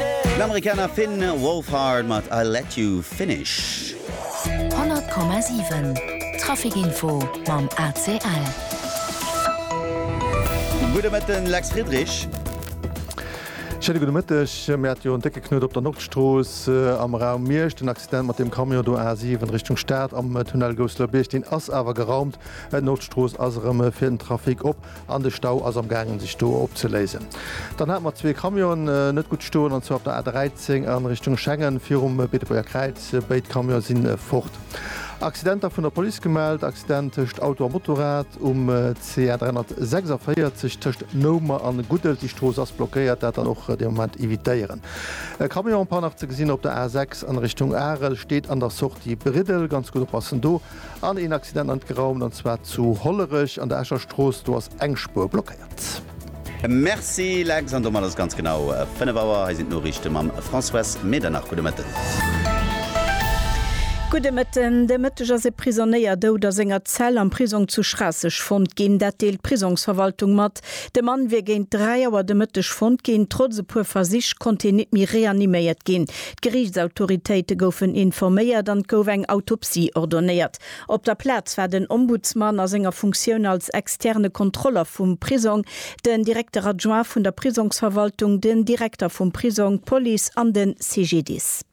Den Amerikaner Finn Wolfhard mat I'll Let You Finish. 100,7 Traficinfo mam ACL. Gudde Mëtten, Lex Friedrich. Schéine gudde Mëtteg. Mir hate jo en décke Knuet op der Nordstrooss am Raum Miersch. Den Accident mat deem Camion do, A7 Richtung Stad am Tunnel Gousseler Bierg, deen ass awer geraumt. D'Nordstrooss ass erëm fir den Trafic op. An de Stau ass am gaangen sech do opzeléisen. Dann hate mer zwee Camionen net gutt stoen, an zwar op der A 13 a Richtung Schengen virum Beetebuerger Kräiz. Béid Camione si fort. Accidenter vun der Police gemellt, Accident tëscht Auto a Motorrad um CA 346 tëscht Noumer an Guddel. Déi Strooss ass blockéiert, dat dann och de Moment evitéieren. E Camion en panne nach ze gesinn op der A 6 an Richtung Arel, steet an der Sortie Briddel, ganz gutt oppassen do. An een Accident an geraumt, an zwar zu Hollerech an der Escher Strooss, do ass eng Spuer blockéiert. Merci Lex, an domat ass et ganz genau 5 Auer. Hei sinn d'Noriichte mam Françoise Medernach. Gudde Mëtten. Gudde Mëtten. De Mëtteg ass e Prisonéier dout a senger Zell am Prisong zu Schraasseg fonnt ginn. Dat deelt d'Prisongsverwaltung mat. De Mann wier géint 3 Auer de Mëtteg fonnt ginn. Trotz e puer Versich konnt hien nit méi reaniméiert ginn. D'Geriichtsautoritéite goufen informéiert an et gouf eng Autopsie ordonéiert. Op der Plaz war den Ombudsman a senger Funktioun als externe Kontroller vum Prisong, den Directeur adjoint vun der Prisongsverwaltung, den Direkter vum Prisong, d'Police an de CGDIS.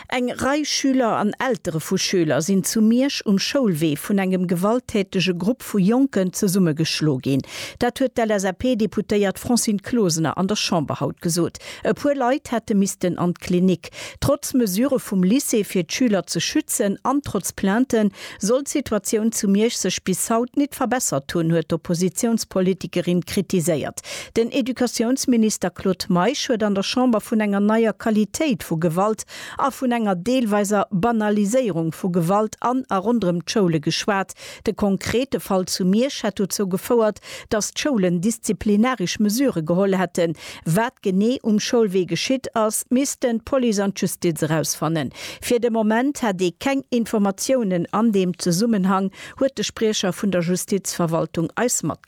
Eng Rei Schüler an Eltere vu Schüler sinn zu Miersch um Schoulwee vun engem gewalttätege Grupp vu Jonken zesummegeschlo ginn. Dat huet d'LSAP-Deputéiert Francine Closener an der Chamber haut gesot. E puer Leit hätte missten an d'Klinik. Trotz Mesure vum Lycée fir d'Schüler ze schützen an trotz Plainte Sollt d'Situatioun zu Miersch sech bis haut nit verbessert hunn, huet d'Oppositiounspolitikerin kritiséiert. Den Educatiounsminister Claude Meisch huet an der Chamber vun enger neier Qualitéit vu Gewalt a vun enger deelweiser Banaliséierung vu Gewalt an a ronderëm d'Schoule geschwat. De konkrete Fall zu Miersch hätt dozou gefouert, datt d'Schoulen disziplinarisch Mesure geholl hätten, Wat genee um Schoulwee geschitt ass, missten d'Police an d'Justiz erausfannen. Fir de Moment hätt ee keng Informatiounen an deem Zesummenhang, huet de Spriecher vun der Justizverwaltung eis matgedeelt.